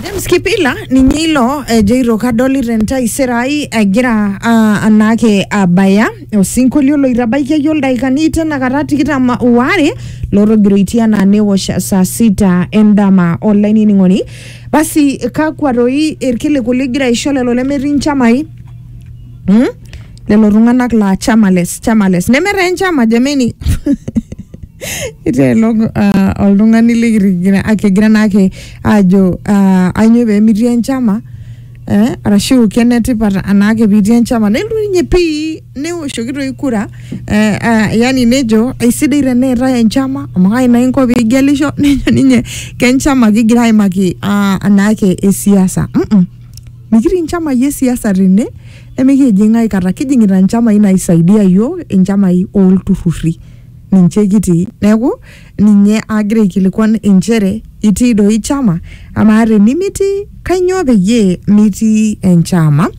James Kipila ninye ilo ejo ito kadolita entaisere ai egira ah, anaake abaya osinkolio loitabaiki iyie ildaikani tenakata tikitam waare lotogiroitie anaa newosh saa sita endama olainining'oni basi kakwa toi irkiliku ligira aisho lelo lemetii nchamai hmm? lelo tung'anak laa chamales chamales nemetaa enchama jameni iteelo uh, oltung'ani likigira akigira naake ajo uh, ainyo pemitii enchama eh, arashu kenetipat anaake pitii enchama nelotu ninye pii newoshoki toi kura eh, uh, yani nejo aisidai teneetae enchama amu kai naa inko pigelisho nejo ninye kenchama kigira aimaki uh, anaake esiasa mm -mm. Mikitii nchamai e siasa tene nemikijing aikata. Kijing'ita nchamai naisaidia yiok, inchamai olturrurri. Ninche kitii. Neeku, ninye agira aikilikwan injere, itii doi chama? Amaa tenimitii, kanyioo peyie mitii enchama?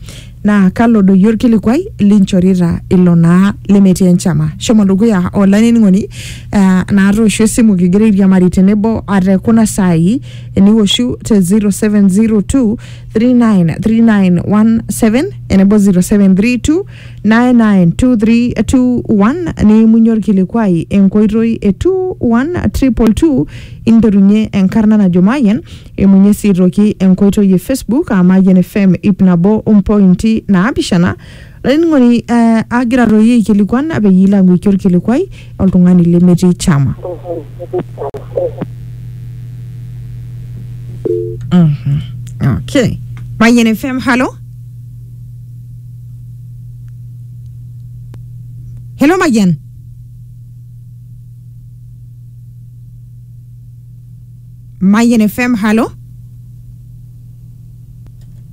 Na kalo doi orkilikwai linchorita ilo naa lemetii enchama. Shomo dukuya olainining'oni, ah natoosho esimu kigira airiamari tenebo tekuna saai. eniwoshu te 0702393917 enebo 0732992321 niimunye orkilikuai enkoitoi e 21222 interunye enkarna najo mayian imunye sii toki enkoitoi e facebook aa mayian fm ip nabo ompointi naapishana Laining'oni eh, agira doi aikilikuan peyie ilo ang'uiki olkilikuai oltung'ani lemetii chama. Mhm. Okay. Mayian FM, halo. Hello Mayian. Mayian FM, halo.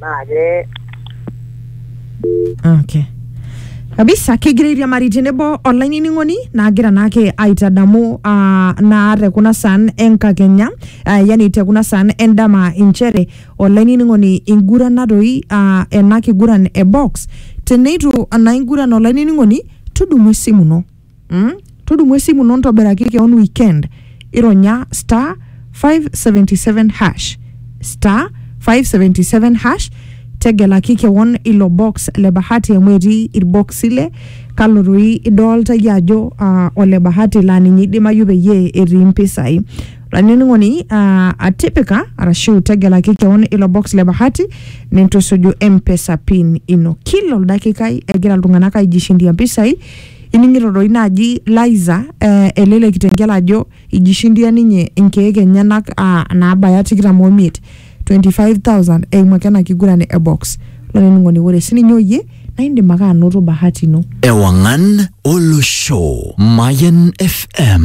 naake okay kabisa kigira airiamari tenebo olainining'oni naagira naake aitadamu ah, naa te kuna saan enkakenya ah, yani te kuna saan endama inchere olainining'oni ingurana doi ah, ena kiguran e box teneitu naa inguran olainining'oni tudumu esimu ino Mm? Tudumu esimu ino ntobiraki keon weekend. Ironya star 577 hash. Star 577 hash. Tegelaki keon ilo box le bahati amu etii irbox ile kalo doi idolta iyie ajo uh, ole bahati laa ninye idimayu peyie etii mpisai. Olainining'oni uh, atipika arashu tegelaki keon ilo box le bahati nintusuju M-Pesa pin ino. Kila oldakikai egira iltung'anak aijishindia mpisai Ining'ito doi naaji Liza eh, ele le Kitengela ajo ijishindia ninye inkeek enyenak ah, naabaya tikitam omiet 25,000 eimu ake ena kiguran e box. Olainining'oni ore sininye oyie naa indim ake anoto bahati ino. Ewangan Olosho. Mayan FM.